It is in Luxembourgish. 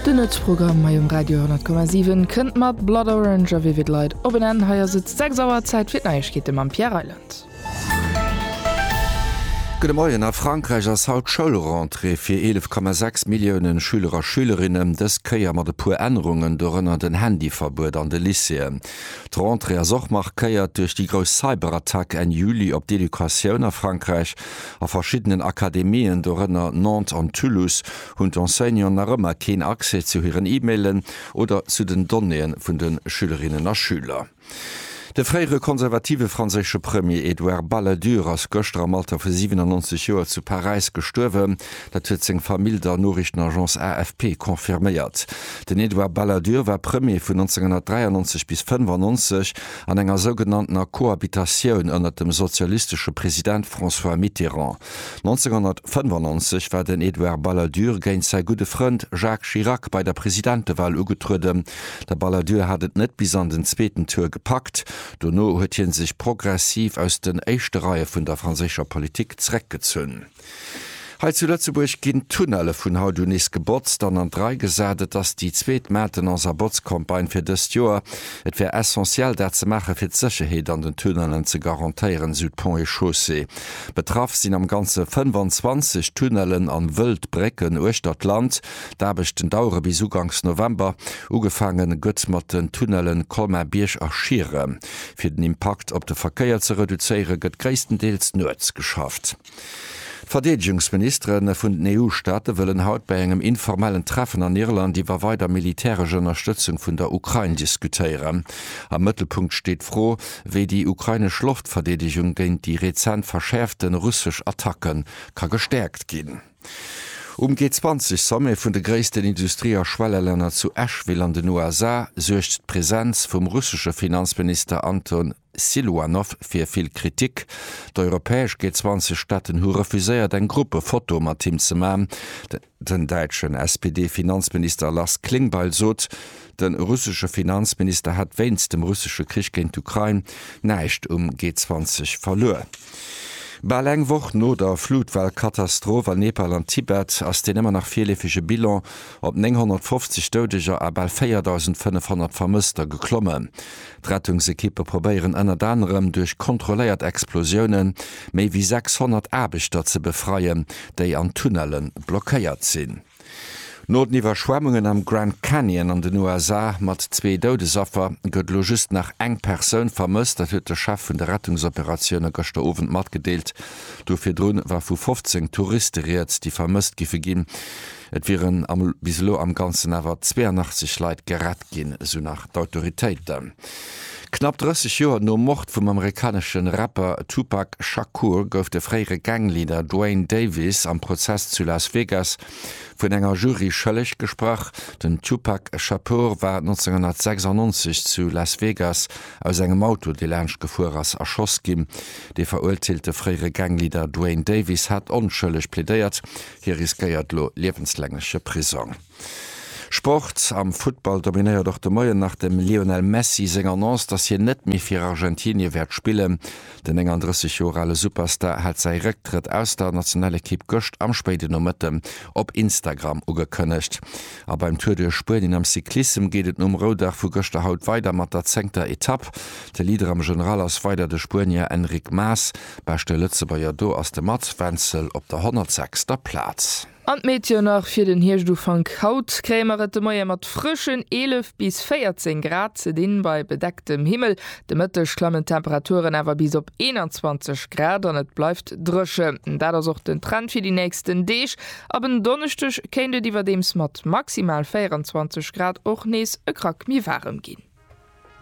Den Nuetsprogramm hei um Radio 10,7 kënnt mat Blood Orange a Vivid Light op en Enn. Hei ass et 6 Auer, Zäit fir d'Neiegkeete mam Pierre Reyland. Gudde Moien, A Frankräich ass haut Schoulrentrée fir 11,6 Milliounen Schüler a Schülerinnen, dës Kéier mat e puer Ännerungen, dorënner den Handyverbuet an de Lycéeën. D'Rentrée ass och markéiert duerch déi grouss Cyberattack Enn Juli op d'Educatioun a Frankräich. A verschiddenen Akademien, dorënner Nantes an Toulouse, Hunn d'Enseignanten nach ëmmer keen Accès zu hiren E-Mailen oder zu den Donnéeë vun de Schülerinnen a Schüler? De fréiere konservative franséische Premier Edouard Balladur ass gëschter am Alter vu 97 Joer zu Paräis gestuerwen. Dat huet seng Famill der Noriichtenagence AFP confirméiert. Den Edouard Balladur war Premier vun 1993 bis 1995 an enger sougenanntener Cohabitatioun ënnert dem sozialistesche President François Mitterrand. 1995 war den Edouard Balladur géint säi gudde Frënd Jacques Chirac bei der Presidentewal ugetrueden. De Balladur hat et net bis an den zweeten Tour gepackt. Dono huet hie sech progressiv aus den éischte Reie vun der franséischer Politik zeréckgezunn. Hei zu Lëtzebuerg ginn d'Tunnelle vun haut un nees gebotzt an an d'Rei gesat. Et ass déi zweet Maintenance a Botzcampagne fir dëst Joer. Et wär essentiell dat ze maachen, fir d'Sécherheet an den Tunnellen ze garantéieren, esou d'Ponts et Chaussées. Betraff sinn am Ganze 25 Tunnellen an wëllt Brécken uechter d'Land. D'Aarbechten dauere bis uganks November. Ugefaange gëtt mat den Tunnellen Colmar-Bierg a Schiere. Fir den Impakt op de Verkéier ze reduzéiere gëtt gréisstendeels nuets geschafft. D'Verdeedegungsministere vun den EU-Staate wëllen haut bei engem informellen Treffen an Irland iwwer weider militäresch Ënnerstëtzung vun der Ukrain diskutéieren. Am Mëttelpunkt steet d'Fro, wéi déi ukrainesch Loftverdeedegung géint déi rezent verschäerfte russesch Attacke ka gestäerkt ginn. Um G20-Sommet vun de gréissten Industrie a Schwellelänner zu Asheville an den USA suergt d'Presenz vum russesche Finanzminister Anton Siluanow fir vill Kritik. D'europäesch G20-Staaten hu refuséiert eng Gruppefoto mat him ze man. Den däitschen SPD-Finanzminister Lars Klingbeil sot, de russesche Finanzminister hätt wéinst dem russesche Krich géint d'Ukrain näischt um G20 verluer. Bal eng Woch no der Flutwell-Katastroph an Nepal an Tibet ass deen ëmmer nach virleefege Bilan op 950 Doudeger a bal 4.500 Vermësster geklommen. D'Rettungsekippe probéieren ënnert anerem duerch kontrolléiert Explosioune méi wéi 600 Aarbechter ze befreien, déi an Tunnelle blockéiert sinn. No den Iwwerschwemmungen am Grand Canyon an den USA mat zwee Doudesaffer gëtt elo just nach eng Persoun vermësst. Dat huet de Chef vun de Rettungsoperatioune gëschter Owend matgedeelt. Do virdrun war vu 15 Touriste rieds, déi vermësst giffe ginn. Et wieren bis elo am Ganzen awer 82 Leit gerett ginn, esou nach d'Autoritéiten. Knapp 30 Joer nom Mord vum amerikanesche Rapper Tupac Shakur gouf de fréiere Gang-Leader Duane Davis am Prozess zu Las Vegas vun enger Jury schëlleg gesprach. Den Tupac Shakur war 1996 zu Las Vegas aus engem Auto, dee laanscht gefuer ass, erschoss ginn. Dee veruerteelte fréiere Gang-Leader Duane Davis hat onschëlleg plädéiert, Hie riskéiert lo liewenslängeche Prisong. Sport, Am Futtball dominéiert och de Moien nach dem Lionel Messi seng Annonce, dass hien net méi fir Argentinie wäert spillen. Den 39 Joer ale Superstar hat säi Récktrëtt aus der Nationalekipp gëscht am spéiden Nomëtte op Instagram ugekënnegt. A beim Tour duerch Spuenien am Cyclissem geet et nom Roudag vu gëschter haut weider mat der zéngter Etapp. De Leader am General ass weider de Spuenier Enric Mas. Beschte Lëtzebuerger do ass de Mats Wenzel op der 106. der Plaz. An d'Meteoen nach fir den Hierscht-Ufank, Haut kréie mer et de Moie mat frëschen 11 bis 14 Grad ze dinn, bei bedecktem Himmel. De Mëtteg klammen d'Temperaturen awer bis op 21 Grad an et bleift dréchen. Dat ass och den Trend fir déi nächsten Deeg. Ab en Donneschdeg kéint et iwwerdeems mat maximal 24 Grad och nees e Krack méi waarem ginn.